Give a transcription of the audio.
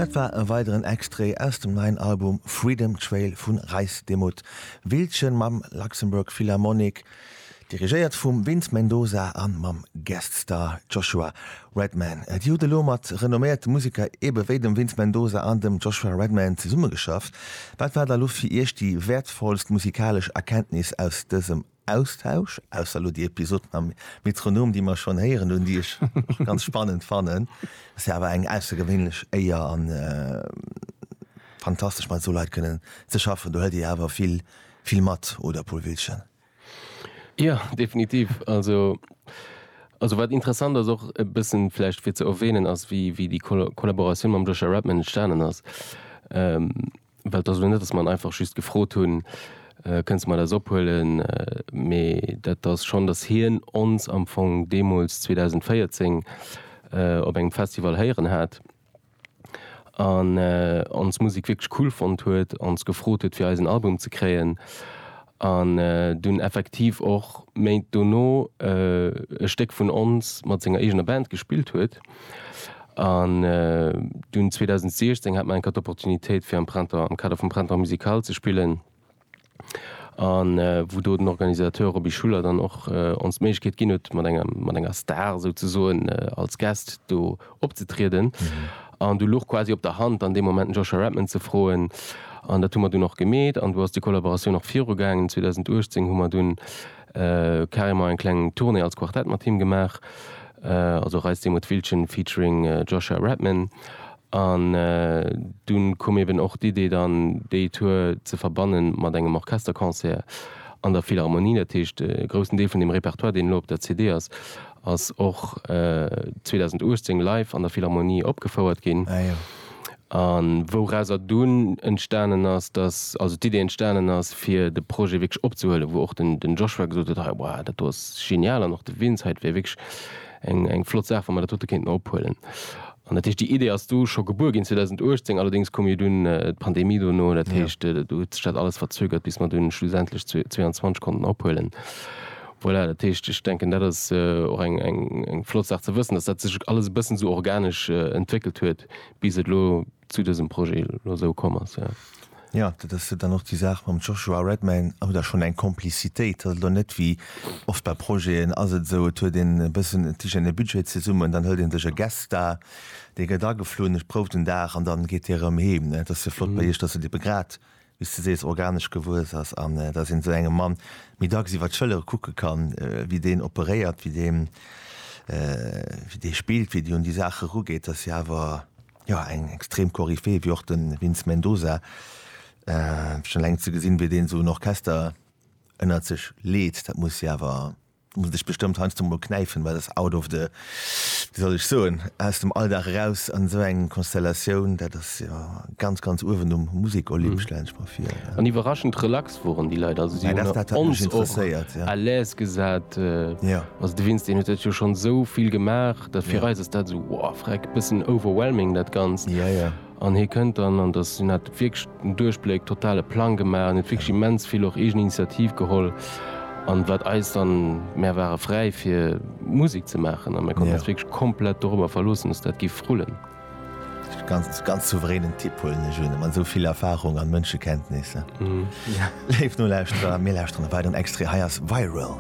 Dat war e weideren Extrait aus dem neien Album Freedom Trail vu Reis de Mud, Wildchen mam Luxembourg Philharmonic, dirigéiert vum Vince Mendoza a mam Guest Star Joshua Redman. Dir hutt elo mat renomméierte Museker ebe wéi dem Vince Mendoza an dem Joshua Redman zesummegeschafft. Wat war da elo fir Iech déi wäertvollst musikalesch Erkenntnis aus dësem Austausch, ausser elo déi Episoden am Metronom, déi mer schonn héieren hunn, déi ech ganz spannend fannen. Ass jo awer eng aussergewéinlech Éier a fantastesch mat esou Leit kënnen ze schaffen. Do huelt Dir jo awer vill, vill mat, oder Paul Wiltgen? Jo, definitiv. Also, also wat interessant ass, och e bëssen vläicht fir ze erwähnen, ass wéi, wéi déi Kollaboratioun mam Joshua Redman entstanen ass. Well et ass elo net, datt mer en einfach just gefrot hunn, Kënnst de mer dat ophuelen? Mee dat ass schonn, datt hien ons am Fong deemools 2014 op engem Festival héieren hat an ons Musek wierklech cool fonnt huet, ons gefrot huet fir eisen Album ze kréien an dunn effektiv och Méint dono e Stéck vun ons mat senger eegener Band gespillt huet. An dunn 2016 hat mer eng Kéier d'Opportunitéit fir am Printemps, am Kader vum Printemps musical ze spillen, an wou do den Organisateur Roby Schuller dann och ons d'Méiglechkeet ginn huet mat enger, mat enger Star souzesoen als Guest do opzetrieden. An du luch quasi op der Hand an deem Moment den Joshua Redman ze froen, an dat hu mer dunn och gemeet, an do ass déi Kollaboratioun och virugaangen. 2018 hu mer dunn carrément eng kleng Tournée als Quartett mat him gemaach, also Reise des Motwillchen featuring Joshua Redman, an dunn koum eben och d'Idee dann déi Tour ze verbannen mat engem Orchesterconcert an der Philharmonie. Dat heescht e groussen Deel vun dem Repertoire deen elo op der CD ass, ass och 2018 live an der Philharmonie opgefouert ginn. A wourauser dunn entstanen ass, dass also d'Idee entstanen ass, fir de Projet wierklech opzehuelen, wou och den Joshua gesot huet, hei, wow, dat do ass genial, an och de Vince, hei, dat wär wierklech eng flott Saach, wa mer dat dote kéinten ophuelen. An dat heescht, déi Idee ass du scho gebuer ginn 2018, allerdéngs koum jo dunn d'Pandemie dono, dat heescht, do huet sech dat alles verzögert, bis mer dunn schlussendlech 22 konnten ophuelen. Voilà, dat heescht, ech denken, dat ass och eng flott Saach ze wëssen, dass dat sech alles e bëssen esou organesch entwéckelt huet, Bis et elo zu dësem Projet elo esou komm ass, jo. Jo, dat ass jo dann och déi Saach mam Joshua Redmayne, huet der schonn eng Komplizitéit, ass elo net wéi oft bei Projeten, ass et esou, et huet een e bëssen, et licht een e Budget zesummen, dann hëlt ee sech e Guest Star, dee gëtt ageflunn, et prouft en Dag an dann geet dee erëm heem, ne? Et ass jo flott bei Iech, datt et ebe grad wéi s de sees, organesch gewuess ass an dass een esou engem Mann méi dacks iwwer d'Schëllere kucke kann, wéi deen operéiert, wéi deen, wéi dee spillt, wéi dee un déi Saach erugeet, dass si awer, jo, eng extrem Koryphäe wéi och de Vince Mendoza, schonn eleng ze gesinn, wéi deen esou en Orchester ënnert sech leet, dat muss si awer. muss dech bestëmmt heiansdo mol knäifen, well ass out of the, wéi soll ech soen, aus dem Alldag eraus an esou eng Konstellatioun, dat ass jo ganz, ganz uewen um Musek-Olymp, stellen ech mer vir. An iwwerraschend relax woren déi Leit, also si hunn ons och à l'aise gesat, also de Vincent, deen huet dat jo schonn esou vill gemaach, dat fir eis ass dat esou, wow, freck, bëssen overwhelming dat Ganzt. An hie kënnt dann, an dass hien hat wierklech den Duerchbléck, totale Plang gemaach an huet wierklech immens vill och eegen Initiativ geholl. An wat eis dann, mär ware fräi fir Musek ze maachen a mär konnten eis wierklech komplett dorobber verloossen, dass dat géif rullen. Ganz, ganz souveränen Typ huelen ech un, mat esou vill Erfahrung an Mënschekenntnis. Léif Nolauschterer, mir lauschteren e weideren Extrait, hei ass Viral.